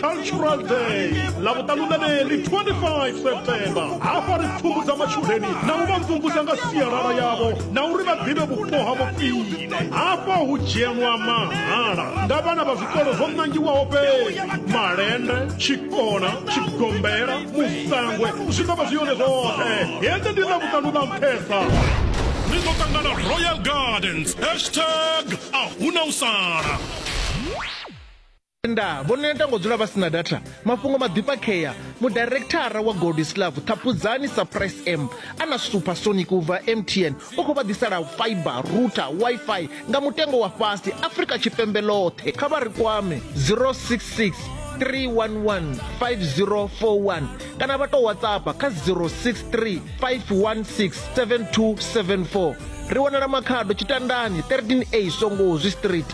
cultural day ḽa vhuṱanu na ḽeḽi 25 september hafha ri pfumbudza matshudeni na u vha mvumvusa nga sialala yavho na uri vha ḓivhe vhupo ha vhofhile hafha hu dzhenwa mahala nga vhana vha zwikolo zwo ṋangiwaho fhedzi malende tshikona tshigombela musangwe zwi ḓo vha zwi yone zwoṱhe hedzi ndi ḽa vhuṱanu ḽa nṱhesa ni ḓo ṱangana royal gardens hashtag a huna u sala Tenda vho neta ngo dzula vha si na data. Mafhungo maḓifhakhea, Mudairikthara wa Goldislav Ṱhaphudzani Surprise M a na Supersonic u bva MTN u khou vha ḓisela fibre, router, Wi-Fi nga mutengo wa fhasi Afrika Tshipembe ḽoṱhe. Kha vha ri kwame 066 311 5041 kana vha tou WhatsAppa kha 063 516 7274. Ri wanala Makhado, Tshitandani 13A Songozi Street.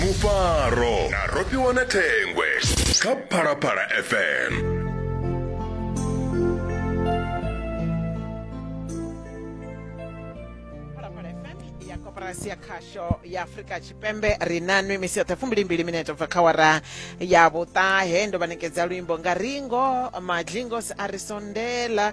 mufaro na rofhiwa na thengwe kha phalaphala fm Phalaphala FM ya koporasi ya khasho ya afurika tshipembe ri na nwi misi yoṱhe fumbilimbili minete bva kha wara ya vhuṱahe ndo vha nekedza luimbo nga ringo madlingos a ri sondela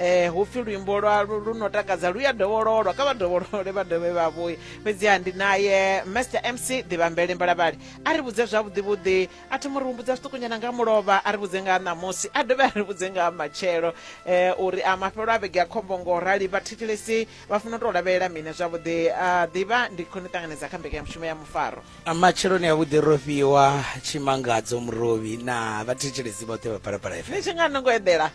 eh hu pfi luimbo lwa lu no takadza lu ya dovhololwa kha vha dovholole vha dovhe vha vhuye fhedziha ndi naye master mc ḓivhambele mbalavhali a ri vhudze zwavhuḓivhuḓi a thoma ri humbudza zwiṱukunyana nga mulovha a ri vhudze nga ṋamusi a dovhe a ri vhudze nga matshelo eh uri a mafhelo a vhege a khombo ngo rali vha thetshelesi vha funa u tou lavhelela mini zwavhuḓi a ḓivha ndi khone ṱanganedza kha mbekanyamushumo ya mufaro matsheloni avhuḓi ro fhiwa tshimangadzo murovhi na vhathetshelesi vhoṱhe vha phalaphala fm ni tshi nga no ngo eḓela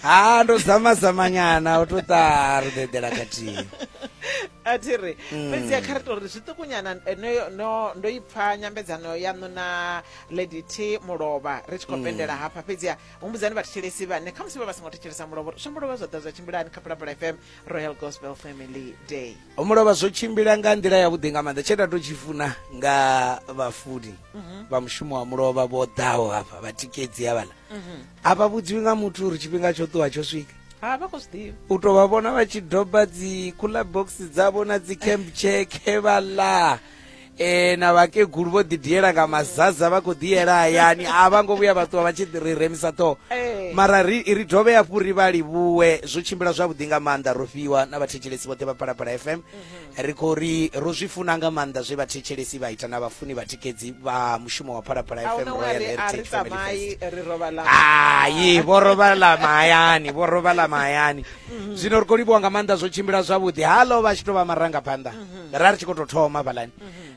ha ndo zama zama nyana u to ta ri dedela khathihi a thi ri mm. fhedzi a kha ri to ri zwiṱukunyana eh, no ndo i pfha nyambedzano yaṋu na lady t mulovha ri tshi khou mm. pendela hafha fhedzi a humbudzani vhathetshelesi vhane kha musi vha vha songo thetshelesa mulovha shambo lovha zwa ḓa zwa tshimbilani kha phalaphala fm royal gospel family day ho mu lovha zwo tshimbila nga nḓila yavhuḓi nga maanḓa tshe nda to tshi funa nga vhafuni vha mushumo wa mulovha vho ḓaho hafha vhatikedzi havhala a vha vhudziwi nga muthu uri tshifhinga tsho ṱuwa tsho swika ha vha khou zwi ḓivha u tou vha vhona vha tshi doba dzi cooler box dzavho na dzi camp cheke vha ḽa e na vhakegulu vho ḓi diela nga mazaza vha khou ḓiyela hayani a vha ngo vhuya vha ṱuwa vha tshi ri remisa ṱhoho eh. mara ri ri dovhe hafhu ri vha livhuwe zwo tshimbila zwavhuḓi nga maanḓa ro fhiwa na vhathetshelesi vhoṱhe vha phalaphala fm mhm. ri khou ri ro zwi funa nga maanḓa zwe vhathetshelesi vha ita na vhafuni vhatikedzi vha mushumo wa phalaphala fm royal heritage family fest hayi vho robala mahayani vho robala mahayani mhm. zwino ri khou livhuwa nga maanḓa zwo tshimbila zwavhuḓi halo vha tshi tou vha marangaphanḓa mhm. ra ri tshi khou tou thoma vhalani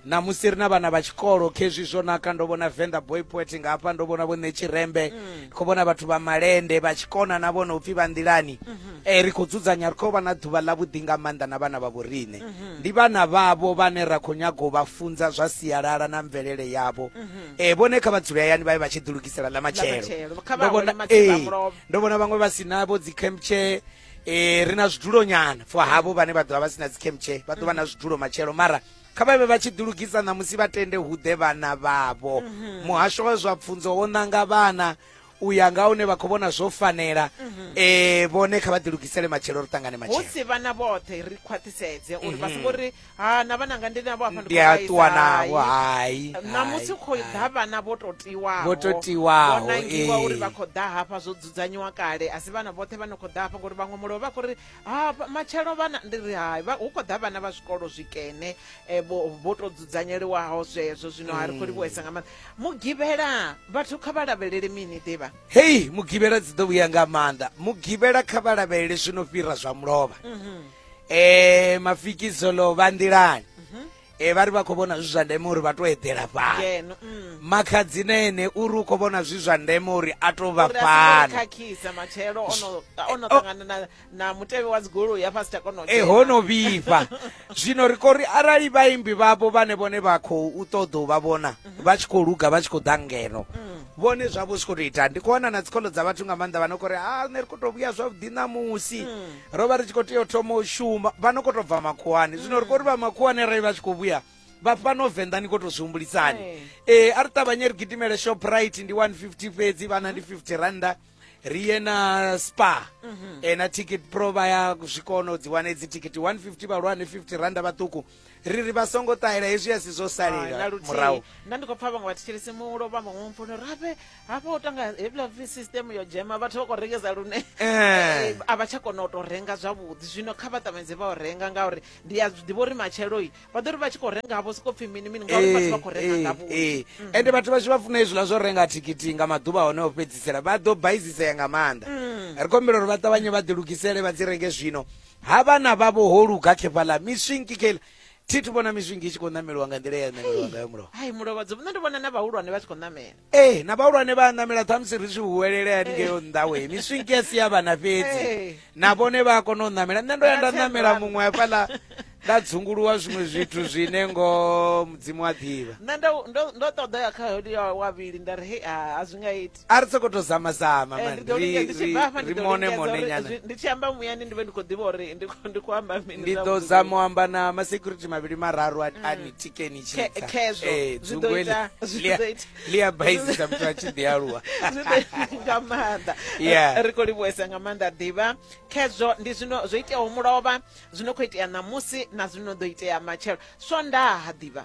na musi ri na vhana vha tshikolo khezwi zwo naka ndo vhona venda boy poet nga hafha ndo vhona vhone tshirembe mm. khou vhona vhathu vha malende vha tshikona na vhona upfhi vha nḓilani mm-hmm. e ri khou dzudzanya ri khou vha na ḓuvha ḽa vhuḓi nga maanḓa na vhana vha vhoriṋe mm-hmm. ndi vhana vhavho vhane ra khou nyaga u vha funza zwa sialala na mvelele yavho mm-hmm. e vhone kha vha dzule hayani vha ye vha tshi ḓilugisela ḽa matshelo ndo vhona vhaṅwe vha si navho dzi campchair e, ri na zwidulo nyana for havho vhane vha ḓovha vha si na dzicamche vha ḓo vha na zwidulo matshelo mara kha vhavhe vha tshi ḓilugisa ṋamusi vha tende hu ḓe vhana vhavho mhm. muhasho wa zwa pfunzo wo ṋanga vhana u ya nga hune vha khou vhona zwo fanela mhm. eh vhone kha vha ḓilugisele matshelo ri ṱangane matshelo hu si vhana vhoṱhe ri khwaṱhisedze uri vha songo mhm. ri ha na vhananga ndi navho hafha ndi a ṱuwa navho hai ṋamusi khou ḓa vhana vho to tiwaho vho to tiwaho vho nangiwa uri vha khou ḓa hafha zwo dzudzanyiwa kale a si vhana vhoṱhe vha no khou ḓa hafha ngori vhaṅwe mulovha vha khou ri ha matshelo vhana ndi ri hai hu khou ḓa vhana vha zwikolo zwikene eh, vho to dzudzanyeliwaho zwezwo zwino ha ri khou livhuhesa nga maanḓa mugivhela vhathu kha vha lavhelele mini ḓivha hei mugivhela dzi ḓo vhuya nga maanḓa mugivhela kha vha lavhelele zwino fhira zwa mulovha mhm. eh mafikizo lo vha nḓilani mhm. eh vha ri vha khou vhona zwi zwa ndeme uri vha tou eḓela fhano mm. makhadzina ene uri u khou vhona zwi zwa ndeme uri a tou vha fanokhakhisa matshelo ono oh. ṱangana na mutevhe wa dzigoloi ya fasi takono e eh, ho no vhifha zwino ri khou ri arali vhaimbi vhavho vhane vhone vha khou u ṱoḓa u vha vhona mhm. vha tshi khou luga vha tshi khou ḓa ngeno mm. vhone zwavho zwi khou tou ita ndi khou wana na dzikolo dza vhathu nga maanḓa vha no khou ri a ah, ne ri khou tou vhuya zwavhuḓi ṋamusi mm. ro vha ri tshi khou tea u thoma u shuma vha no khou tou bva makhuwani zwino ri khou ri vha makhuwani arali vha tshi khou vhuya vha fhano venḓa ni khou tou zwi humbulisani ee a ri ṱavhanye ri gidimele shoprite ndi 150 fhedzi vhana ndi 50 randa ri ye na spa e na ticket pro vha ya zwi kona u dzi wane dzi ticket 150 vhahulwane 50 randa vhaṱuku ri ri vha songo ṱahela hezwi a si zwo salela murahu nda ndi khou pfa vhaṅwe vha thetshelesi mulo vha maṅwe mfuno rabe hafha u tanga hebla system yo dzhema vhathu vha khou rengesa lune eh. Eh, a vha tsha kona u tou renga zwavhuḓi zwino kha vha ṱamedze vha u renga ngauri ndi a ḓivha uri matshelo-i vha ḓo ri vha tshi khou renga havho siko pfhi mini mini ngauri vhathu vha khou renga eh, ngavho mm. ende vhathu vha tshi vha funa hezwiḽa zwo renga thikhithi nga maḓuvha hone o fhedzisela vha ḓo baizisea nga maanḓa mm. ri khombela uri vha ṱavhanye vha ḓilugisele vha dzi renge zwino ha vhana vhavho ho luga khefhaḽa miswinki kheila thi thu vhona miswinki i tshi khou ṋameliwa nga nḓila ya ṋameliwa ngayo mulovha hai mulovhadzo nṋe ndi vhona na vhahulwane vha tshi khou ṋamela ee na vhahulwane vha a ṋamela ṱhamusi ri tshi huwelele haningeo nnḓawe miswinki ya si ya vhana fhedzi na vhone vha a kona u ṋamela nṋe ndo ya nda ṋamela muṅwe hafhaḽa nda dzunguluwa zwiṅwe zwithu zwine ngo mudzimu a ḓivha nṋe ndo ṱoḓa ya kha wa vhili nda ri hei a zwi nga iti a ri soko to zama zama eh, mani ri ri ri mone mone nyana ndi tshi amba muyani ndi vhe ndi kho ḓivha uri ndi kho ndi kho amba mini ndi ḓo za mu amba na ma security mavhili mararu a mm. ni tikeni tshi tsa khezwo eh, zwi ḓo ita zwi ḓo ita li ya baisi sa muthu a tshi ḓi aluwa zwi ḓo ita nga maanḓa yeah eh, ri kho livhuwesa nga maanḓa ḓivha khezwo ndi zwino zwo iteaho mulovha zwino kho itea ṋamusi na zwino ḓo itea matshelo swondaha ḓivha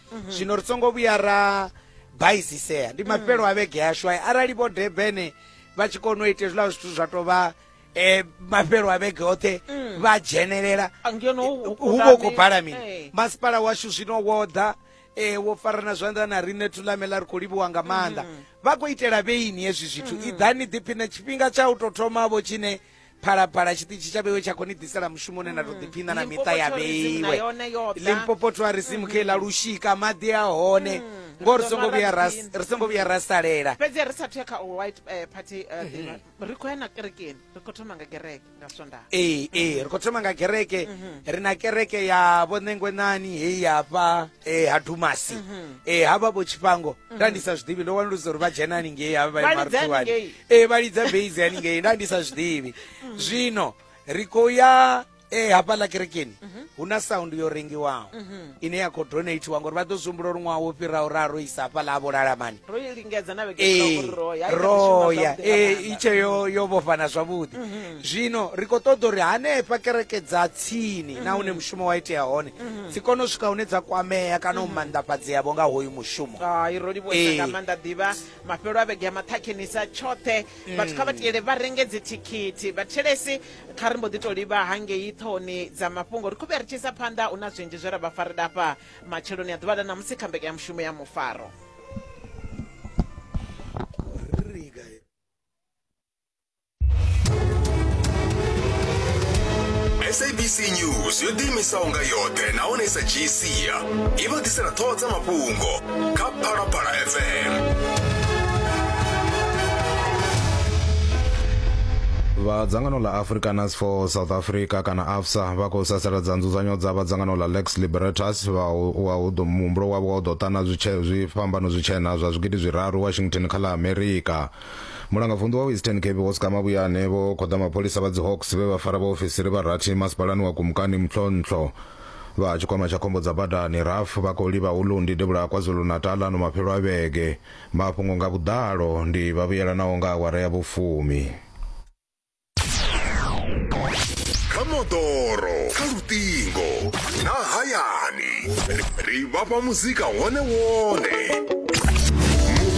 mhm. zwino ri songo vhuya ra baisisea ndi mm. mafhelo a vhege yashu ayi arali vho debene vha tshi kona u ita hezwiḽa zwithu zwa tou vha um mafhelo a vhege oṱhe mm. vha dzhenelela hu vho khou bala mini eh. masipala washu zwino wo ḓa e wo farana zwanḓa na riṋe thulamela ri khou livhuwa nga maanḓa mm. vha khou itela vheini hezwi zwithu mm. iḓani ḓiphine tshifhinga tsha u tou thomavho tshine phalaphala tshiṱitshi tsha vheiwe tsha khou ni ḓisela mushumo une na tou ḓiphina na miṱa ya vheiwe limpopo tourism khe ḽa lushika maḓi a hone ngo ri songo vhuya ra ri songo vhuya ra salela fhedzi ri sathu ya kha u white eh, party eh, dinner. ri khou ya na kerekeni ri khou thoma nga gereke nga swondaha ee ee ri khou thoma nga kereke ri na kereke ya vhonengwenani heyi hafha e ha dumasi mhm. e ha vha vho tshifhango mhm. nda ndi sa zwiḓivhi ndo wanulusa uri vha dzhena haningei ha vha marutuwani e vha lidza base haningei nda ndi sa zwiḓivhi mhm. zwino ri khou ya e hafhaḽa kerekeni hu na sound yo rengiwaho ine ya khou donatiwa ngori vha ḓo zwi humbula uri ṅwaha wo fhiraho ra ro isa hafhaḽa ha vholalamani ro i lingedza na vhege ee, ṱhoko ro ya, i kha ḓi shuma ro ya zwavhuḓi nga ee, maanḓa. itshe yo yo vhofhana zwavhuḓi zwino ri khou ṱoḓa uri hanefha kereke dza tsini na hune mushumo wa itea hone dzi kone u swika hune dza kwamea kana u manḓafhadzeavho nga hoyu mushumo Hai, ro livhuwesa Ee. nga maanḓa ḓivha mafhelo a vhege ya maṱhakhenisa tshoṱhe vhathu kha vha tiyele vha renge dzithikhithi vhathelesi kha ri mbo ḓi to livha hangei ṱhohoni dza mafhungo ri khou vhuya ri tshi isa phanḓa hu na zwinzhi zwe ra vha farela afha matsheloni a ḓuvha ḽa ṋamusi kha mbekanyamushumo ya mufaro sabc news yo ḓiimisaho nga yoṱhe nahone i sa dzhii sia i vha ḓisela ṱhoho dza mafhungo kha phalaphala fm vha dzangano ḽa afrikaners for south africa kana Sa vha khou sasaladza nzudzanyo dza vha dzangano ḽa Lex Libertas, vha wa hu ḓo muhumbulo wavho wa u ḓo ṱana zwitshee zwi fhambano zwitshena zwa zwigidi zwiraru Washington kha ḽa Amerika. Mulangavunḓu wa Eastern Cape Vho Ska Mabuyane vho khoḓa mapholisa vha dzi Hawks vhe vha fara vhaofisiri vha rathi masipalani wa Kumkani Mhlonhlo. Vha tshikwama tsha khombo dza badani, RAF, vha khou livha hu Lundi devhula ha KwaZulu-Natal ano mafhelo a vhege. Mafhungo nga vhuḓalo ndi vhavhuyelanaho nga awara ya vhufumi. kha moḓoro kha luṱingo na hayani ri vhafha muzika wone wone